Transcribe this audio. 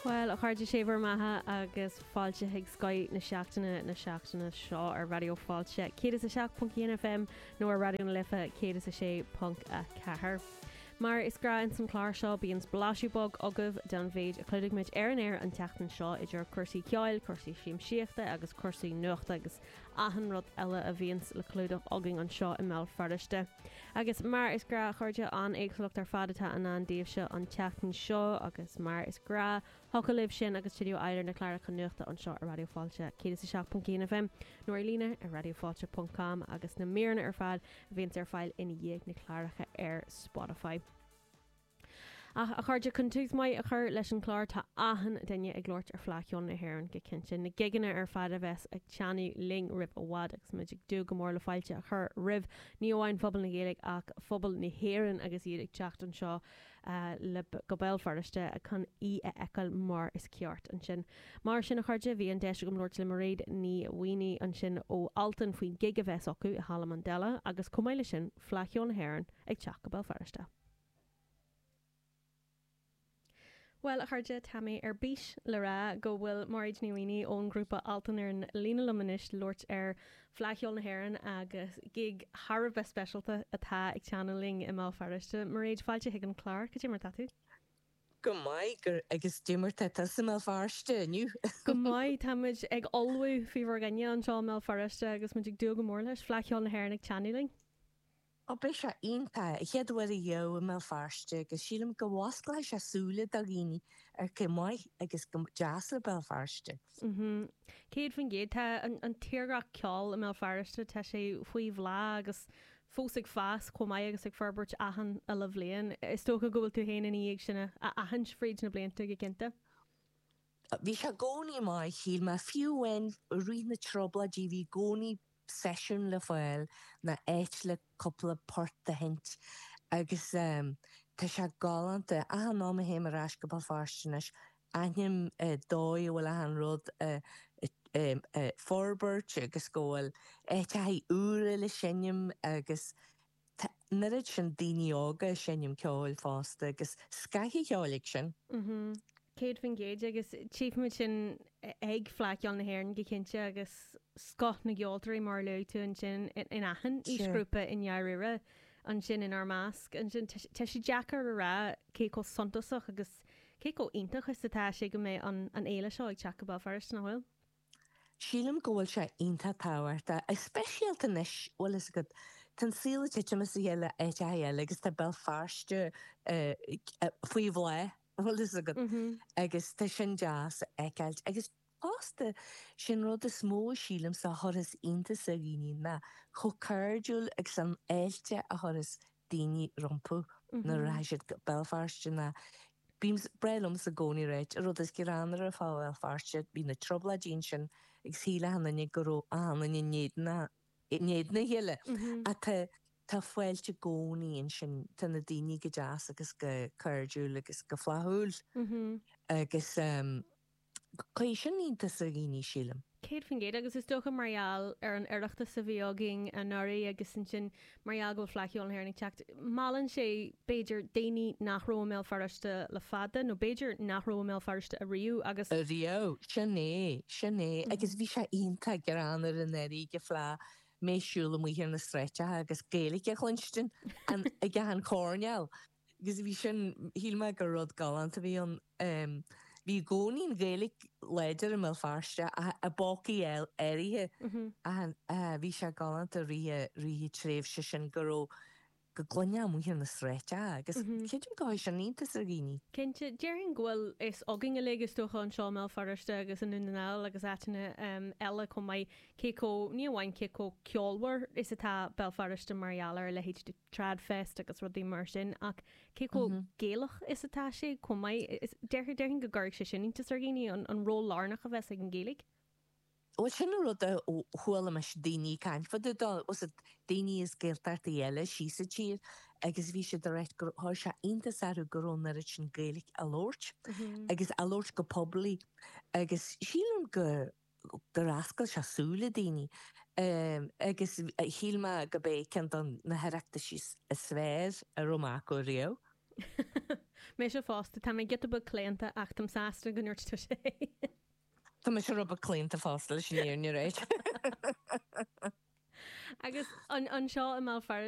Bhuel, a chairde sé bhur mbeatha agus fáilte chuig Scoth na Seachtaine na seachtaine seo ar Raidió Fáilte 107.1 FM nó ar Raidió na Life 106.4. Mar is gnách ins an clár seo bíonn spléachadh beag agaibh den mhéid a chlúdaigh muid ar an aer an tseachtain seo idir cúrsaí ceoil, cúrsaí siamsaíochta agus cúrsaí nuachta agus achan rud eile a bhíonns le clúdach againn anseo i mBéal Feirste. Agus mar is gnách, a chairde, an éagsúlacht ar fad atá i ndán daoibhse an tseachtain seo, agus mar is gnách thiocfadh libh sin agus tuilleadh a fháil ar na cláracha nuachta anseo ar Raidió Fáilte 107.1 FM, nó ar líne ar radiofailte.com, agus na míreanna ar fad a bhíonns ar fáil ina dhiaidh, na cláracha ar Spotify. Ach, a chairde, chun tús maith a chur leis an chlár, tá achan duine ag labhairt ar Fleadh Cheoil na hÉireann go cinnte, na gigeanna ar fad a bheas ag teannadh linn roimh i bhfad, agus muid ag dúil go mór le fáilte a chur roimh ní amháin phobal na Gaeilge ach phobal na hÉireann agus iad ag teacht anseo go Béal Feirste chun í a fheiceáil mar is ceart ansin. Mar sin, a chairde, bhí an deis agam labhairt le Mairéad Ní Mhaonaigh ansin ó Altan faoin gig a bheas acu i Halla Mandela agus chomh maith leis sin, Fleadh Cheoil na hÉireann ag teacht go Béal Feirste. Bhuel, a chairde, tá mé ar bís le rá go bhfuil Mairéad Ní Mhaonaigh ón ghrúpa Altan ar an líne liom anois le labhairt ar Fleadh Cheoil na hÉireann agus gig thar a bheith speisialta atá ag teannadh linn i mBéal Feirste. Mairéad, fáilte chuig an chlár, cad é mar tá tú? Go maith, agus cad é mar tá tusa i mBéal Feirste inniu? Go maith, táimid ag ullmhú faoi bhur gcoinne anseo i mBéal Feirste agus muid ag dúil go mór leis, Fleadh Cheoil na hÉireann ag teannadh linn. Ó, beidh sé iontach, an chéad uair ariamh i mBéal Feirste agus sílim go bhfosclóidh sé súile do dhaoine ar cé chomh maith agus go deas le Béal Feirste. Céad faoin gcéad, tá an tírdhreach ceoil i mBéal Feirste, tá sé faoi bhláth agus fós ag fás chomh maith agus ag forbairt achan uile bhliain. Is dócha go bhfuil tú féin ina dhiaidh sin a aithint fríd na blianta go cinnte. Bhí sé i gcónaí maith, shíl mé, fiú amháin i rith na dTrioblóidí bhí i gcónaí seisiún le fáil nó áit le cúpla port a sheinnt agus tá sé galánta. Achan am a théim ar ais go Béal Feirste anois, aithním an dóigh a bhfuil achan rud á forbairt agus go bhfuil áiteachaí úra le seinm agus Tá an oiread sin daoine óga ag seinm ceoil fosta, agus scoth an cheoil acu sin. Céad faoin gcéad, agus tchífimid sin ag Fleadh Cheoil na hÉireann go cinnte, agus scoth na gceoltóirí mar a luaigh tú ansin in achan aoisghrúpa i ndáiríre ansin inár measc. Ansin tá sé deacair a rá cé chomh suntasach agus cé chomh iontach is atá sé go mbeidh an fhéile seo ag teacht go Béal Feirste, nach bhfuil? Sílim go bhfuil sé iontach tábhachtach, go speisialta anois, bhfuil fhios agat, tá an saol ag titim as a chéile in áiteacha eile agus tá Béal Feirste faoi bhláth, bhfuil fhios agat, agus tá sin deas a fheiceáilt. Agus fosta, sé'n rud is mó a sílimse a chuirfeas iontas ar dhaoine ná chomh cairdiúil agus an fháilte a chuirfeas daoine rompu nuair a thig siad go Béal Feirste ná bíonn, is breá liomsa i gcónaí a ráit, an rud is greannmhaire fá Bhéal Feirste, bhí na Trioblóidí ansin agus shílfeadh achan duine go raibh achan duine in éadan a, in éadan a chéile ach tá, tá fáilte i gcónaí ansin, tá na daoine go deas agus go cairdiúil agus go flaithiúil agus. Cuirfidh sin iontas ar dhaoine, sílim. 100% agus is dócha mar gheall ar an Oireachtas a bhí againn anuraidh agus ansin mar gheall go bhfuil Fleadh Cheoil na hÉireann ag teacht, meallann sé b'fhéidir daoine nach raibh i mBéal Feirste le fada nó b'fhéidir nach raibh i mBéal Feirste ariamh agus. Ariamh, sin é, sin é agus bhí sé iontach greannmhar anuraidh ag an Fleadh mé ag siúl amuigh ar na sráideacha agus Gaeilge a chluinstin ag achan choirnéal. agus bhí sin, shíl mé gur rud galánta a bhí ann. Bhí i gcónaí an Ghaeilge láidir i mBéal Feirste ach i bpócaí áirithe ach bhí sé galánta i rith an tréimhse sin go raibh, go gcluinfeá amuigh ar na sráideacha agus creidim go gcuirfidh sin iontas ar dhaoine. Cinnte, déarfainn go bhfuil fhios againn uilig is dócha anseo i mBéal Feirste agus i nDún na nGall agus áiteanna eile chomh maith cé chomh, ní amháin cé chomh ceolmhar is atá Béal Feirste mar gheall ar a leithéid de. TradFest agus rudaí mar sin ach cé chomh Gaelach is atá sé chomh maith? Déarfainn go gcuirfeadh sé sin iontas ar dhaoine, an ról lárnach a bheas ag an Ghaeilge. Bhuel sin an rud a chuala mise daoine ag caint fá dtaobh dó, fhios agat daoine as Gaeltachtaí eile thíos sa tír agus bhí siad ag rá gur chuir sé iontas orthu go raibh an oiread sin Gaeilge á labhairt agus á labhairt go poiblí agus sílim go gur fhoscail sé súile daoine agus shíl mé gurb é ceann de na hOireachtaisí is fearr a raibh mé acu riamh. Mise fosta, tá mé giota beag claonta ach táim sásta go ndúirt tú é. Tá mise rud beag claonta fosta, leis an fhírinne a rá. Agus anseo i mBéal Feirste?